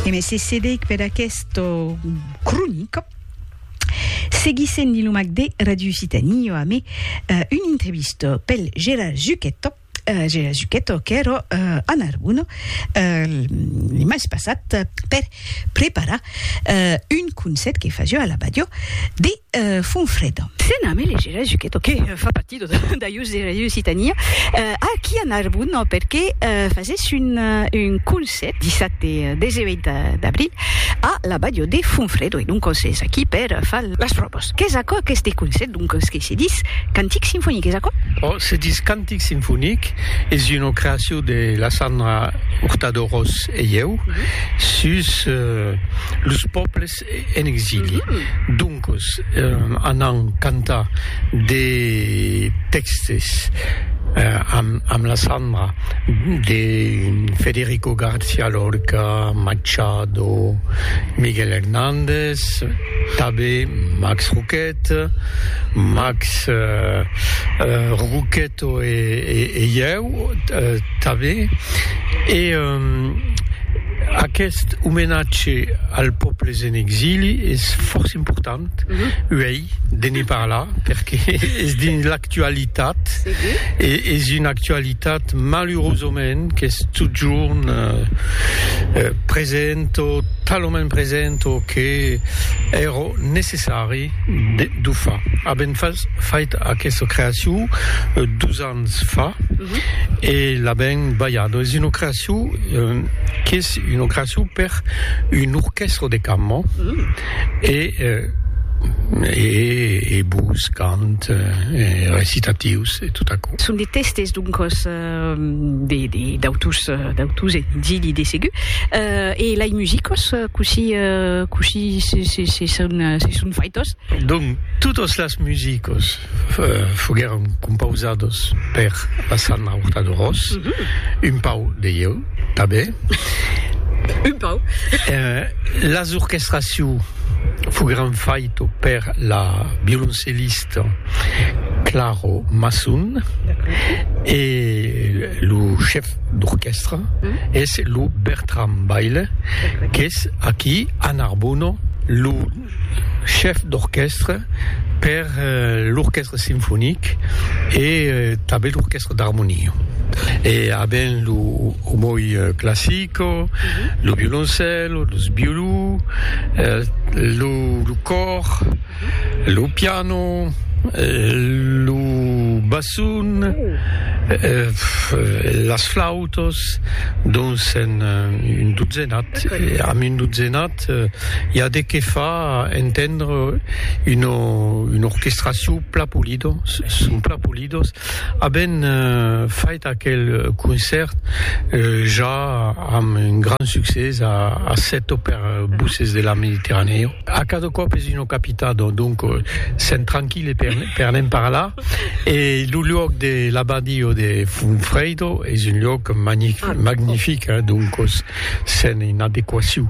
E me se cedic per aquesta cronica. Seguissent Dilomac de Ràdio Occitanie, jo amé una entrevista pel Gérard Zucchetto, Gérard Zucchetto qu'èra a Narbona le mes passat per preparar un concèrt que fasió a la Badiò de Fonfreda. Se name le Gérard Zucchetto, que fa partir Dajós de Ràdio Occitània. Aquí a Narbon, perqué fasés un concèrt dissabte 18 d'abril a la Bàdio de Fonfrèdo, e doncos es aquí per far las pròvas. Qu'es aquò aqueste concèrt, doncos, que se dis Cantic Sinfonic, es aquò? Ò, se dis Cantic Sinfonic, es una creacion de la Sandra Hurtado Ros e ieu, sus los pòbles en exili. Doncos, anam cantar de tèxtes amb la Sandra de Federico García Lorca, Machado, Miguel Hernández, tanben Max Roquette, Max Roquette. To e ieu tanben. E aqueste omenatge als pòbles en exili es fòrça important uèi de ne parlar perque es dins l'actualitat e es una actualitat malurosament qu'es totjorn present o talament present o que èra necessari De d'o fa. Avèm fas fait aquesta creacion dus ans fa e l'avèm balhada. Es una creacion qu'es una creacion per un orquèstra de cambra e e e vos cant e recitatius e tot aquò. Son de tèstes doncas. de d'autus d'autus e dili de segur e lai musicos cosi cosi se se se son se son faitos donc totos las musicos foguèron compausados per la sanna horta de ros un pau de ieu tanben un pau las orchestraciu foguèron faito per la violoncellista Claro Masson e lo chef d'orquèstra es lo Bertram Baile qu'es aquí a Narbona lo chef d'orquèstra per l'orquèstra sinfonic e tanben l'orquèstra d'armonia e aben lo omoi classico, lo violoncèlo, los violons, lo còr. Lo piano, lo basson, las flautas, dons en un dotzenat, amb un dotzenat i a de qué fa entendre una una orquestracion plan polida, son plan polidas, aben fait aquel concèrt ja amb un grand succès a Sèt o per Bosses de la Mediterranèa. A cada còp es una capitado, donc sèm tranquille per ne'n parlar e lo luòc de l'abadio de Funfredo es un luòc magnific, donc sèm en adequacion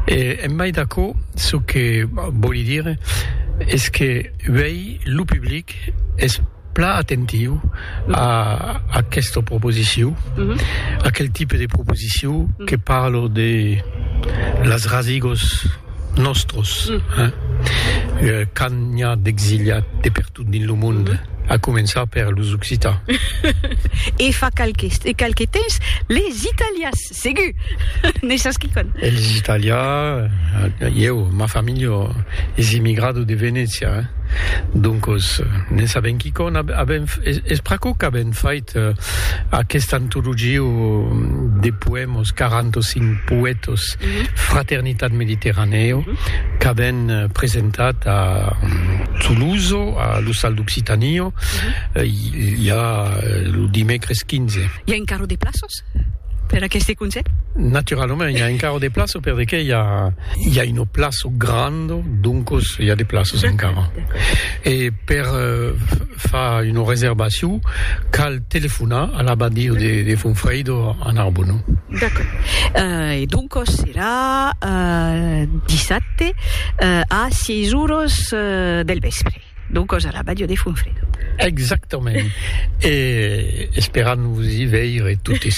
e en mai d'aquò çò que vòli dire es que uèi lo public es. plan atentiu a aquesta proposiciu, aquel tipe de proposiciu que parlo de las rasigos nòstros, quand n'i a d'exiliat de pertot dins lo monde, a començar per los occitans. E fa qualques temps, les italians. Segur! Ne sas quicòm. Eles italià, ieu, ma familha es emigrado de Venècia, doncos ne sabem quicòm. Avem, es pr'aquò qu'avem fait aquesta antologia de poèmas, 45 poètas, Fraternitat Mediterranèo, qu'avem presentat a Toulouse, a l'Ostal d'Occitània, ja lo dimècres 15. I a encara de plaças? per aqueste conselh? Naturalament, i a encara de plaço per de que i a, i a un plaço grand, doncos i a de plaços encara. E per uh, fa una reservacion, cal telefonar a l'abadio de, de Fonfreido a Narbonne. D'accord. Uh, e doncos serà uh, dissabte uh, a 6 horas uh, del vespre. D'au còs a la Bàdia de Fonfredo. Exactament. E esperam vos i veire totes.